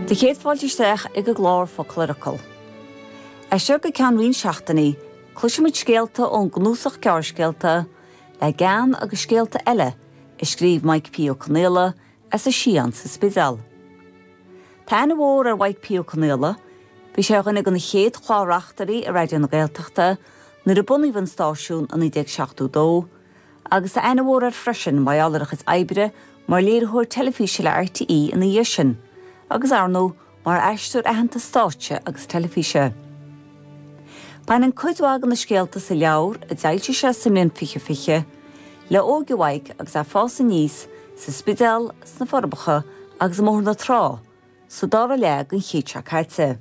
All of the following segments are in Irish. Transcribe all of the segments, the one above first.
Do chéad fáilte isteach ag an gclár Focal ar Fhocal. As seo go ceann roinnt seachtainí, cloisfimid scéalta ón gcnuasach gearrscéalta Le Gean agus Scéalta Eile a scríobh Maidhc P. Ó Conaola as an Sián sa Spidéal. Tá aithne mhór ar Mhaidhc P. Ó Conaola, bhí sé ar dhuine de na chéad chlár-reachtairí i Raidió na Gaeltachta nuair a bunaíodh an stáisiún i 1972, agus tá aithne mhór air freisin mar gheall ar a chuid oibre mar léiritheoir teilifíse le RTÉ ina dhiaidh sin, agus ar ndóigh, mar aisteoir aitheanta stáitse agus teilifíse. Baineann cuid mhaith de na scéalta sa leabhar, a d'fhoilsigh sé sa mbliain 2020, le hóige Mhaidhc agus é ag fás aníos sa Spidéal, sna Forbacha agus i mBóthar na Trá, sa dara leath den chéad seo caite.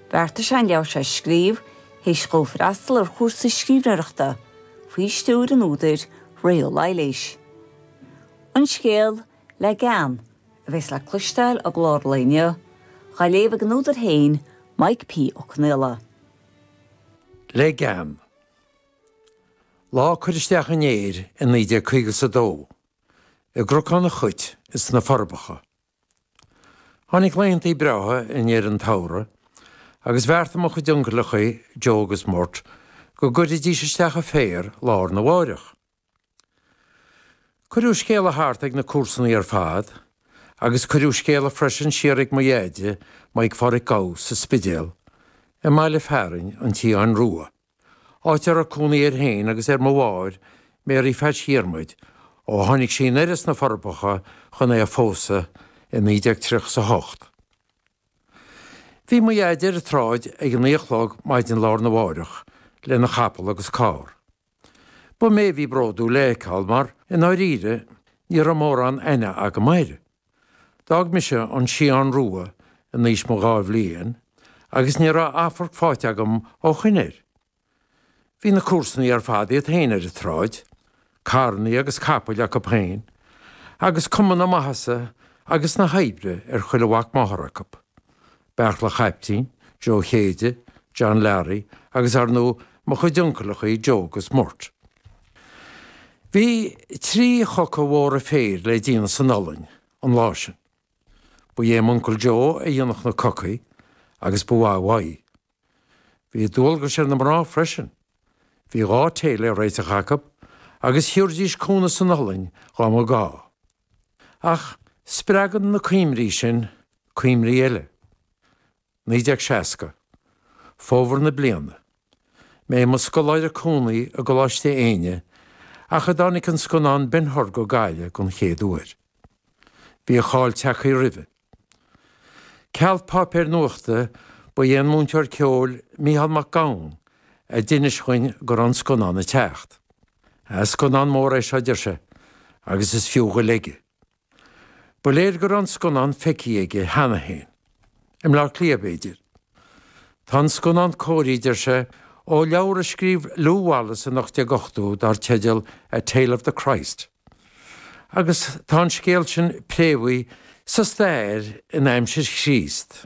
Bheartaigh sé an leabhar seo a scríobh théis dhó freastal ar chúrsa scríbhneoireachta faoi stiúir an údair Ré Ó Laighléis. An scéal, Le Gean, a bheas le cloisteáil i gclár an lae inniu, dhá léamh ag an údar féin, Maidhc P. Ó Conaola. Le gean. Lá cur isteach an fhéir i 1952, i gCnocán an Chait ins Na Forbacha, Tháinig laethanta breátha i ndeireadh an tsamhraidh agus bheartaigh mo chuid uncaileachaí, Joe agus Murt, go gcuirfidís isteach an féar lá arna mháireach. Cuireadh scéala thart ag na comharsanaí ar fad agus cuireadh scéala freisin siar ag mo dheaide, Maidhc Pháraic Gough, sa Spidéal, i mbaile fearainn an tSiáin Rua. áit a raibh cónaí air féin agus ar mo mháthair, Mary Phatch Dhiarmaid, ó tháinig sí anoir as na Forbacha chun é a phósadh i 1938. Bhí mo Dhaid ar an tsráid ag a naoi a chlog maidin lá arna mháireach lena chapall agus carr. Ba mé a bhí bródúil é a fheiceáil mar, i ndáiríre, ní raibh mórán aithne agam air. D'fhág mise an Sián Rua in aois mo dhá bhliain agus ní raibh amharc faighte agam ó shoin air. Bhí na comharsanaí ar fad iad féin ar an tsráid, carrannaí agus capaill acu féin, agus cuma na maitheasa agus na hoibre ar chuile mhac máthar acu. Beartla Chaiptín, Joe Chéide, John Larry agus ar ndóigh mo chuid uncaileachaí Joe 'gus Murt. Bhí trí choca mhóra féir le déanamh san iothlainn an lá sin. Ba é m'uncail Joe a dhéanfadh na cocaí agus ba mhaith uaidh. Bhí dualgais ar na mná freisin. Bhí dhá té le réiteach acu agus thiúrdís cúnamh san iothlainn dhá mba gá. Ach spreagann na cuimhní sin Cuimhní eile. 1960. Fómhar na bliana. Mé i mo scoláire cónaí i gColáiste Éinne nuair a tháinig an scannán Ben Hur go Gaillimh den chéad uair. Bhí a cháil tagthaí roimhe. Ceal páipéir nuachta ba é an múinteoir ceoil Micheál Mac Gabhann a d'inis dhuinn go raibh an scannán ag teacht. Ah, scannán mór é seo, deir sé, agus is fiú dhaoibh uilig é. Ba léir go raibh an scannán feicthe aige cheana féin. I mBleá Cliath, b'fhéidir. Tá an scannán cóirithe, deir sé, ó leabhar a scríobh Lew Wallace in 1880 dar teideal A Tale of the Christ. Agus tá an scéal sin préamhaithe sa stair in aimsir Chríost.